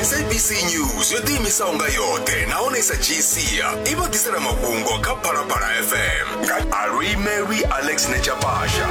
sabc news yo ḓiimisaho nga yoṱhe nahone sa gsia i vha ḓisela mafhungo kha phalaphala fm nga alwi mary alex nechapasha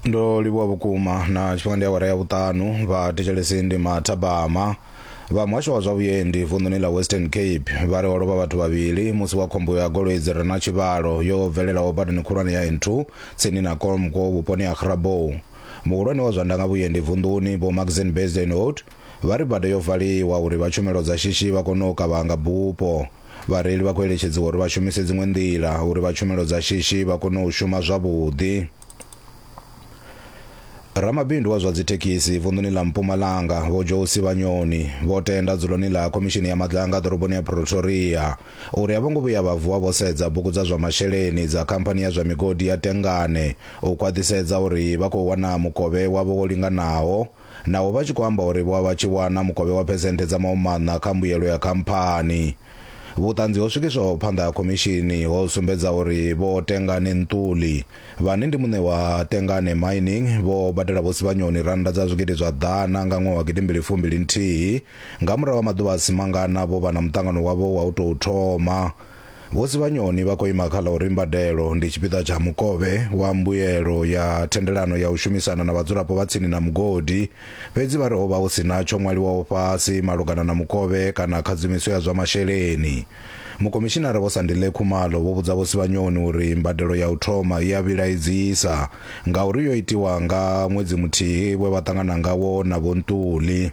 ndo livhuwa vhukuma na tshifhinga ndi awara ya vhuṱanu vha thetshelesi ndi mathabama Vha muhasho wa zwa vhuendi vunḓuni ḽa Western Cape vha ri ho lovha vhathu vhavhili musi wa khombo ya goloi dzi re na tshivhalo yo bvelelaho badani khulwane ya N2 tsini na Kolmko vhuponi ha Grabouw. Muhulwane wa zwa ndanga vhuendi vunḓuni Vho Maxine Bezuidenhout vha ri bada yo valiwa uri vha tshumelo dza shishi vha kone u kavhanga bupo. Vhareili vha khou eletshedziwa uri vha shumise dziṅwe nḓila uri vha tshumelo dza shishi vha kone u shuma zwavhuḓi. Ramabindu wa zwa dzithekhisi vunḓuni ḽa Mpumalanga vho Josi Vhanyoni vho tenda dzuloni ḽa khomishini ya madlanga ḓoroboni ya Pretoria uri a vho ngo vhuya vha vuwa vho sedza bugu dza zwa masheleni dza khamphani ya zwa migodi ya Tengane u khwaṱhisedza uri vha khou wana mukovhe wavho wo linganaho naho vha tshi khou amba uri vho vha vha tshi wana mukovhe wa phesenthe dza mahumaṋa kha mbuyelo ya khamphani. Vhuṱanzi ho swikiswaho phanḓa ha khomishini ho sumbedza uri Vho Tengane Ntuli, vhane ndi muṋe wa Tengane Mining, vho badela Vho Sibanyoni rannda dza zwigidi zwa ḓana nga ṅwaha wa gidimbili fumbili nthihi nga murahu ha maḓuvha a si mangana vho vha na muṱangano wavho wa u tou thoma Vho Sibanyoni vha khou ima kha ḽa uri mbadelo ndi tshipiḓa tsha mukovhe wa mbuelo ya thendelano ya u shumisana na vhadzulapo vha tsini na mugodi, fhedzi vha ri ho vha hu si na tsho ṅwaliwaho fhasi malugana na mukovhe kana khadzimiso ya zwa masheleni. Mukhomishinara Vho Sandile Khumalo vho vhudza Vho Sibanyoni uri mbadelo ya u thoma i a vhilaedzisa ngauri yo itiwa nga ṅwedzi muthihi we vha ṱangana ngawo na Vho Ntuli.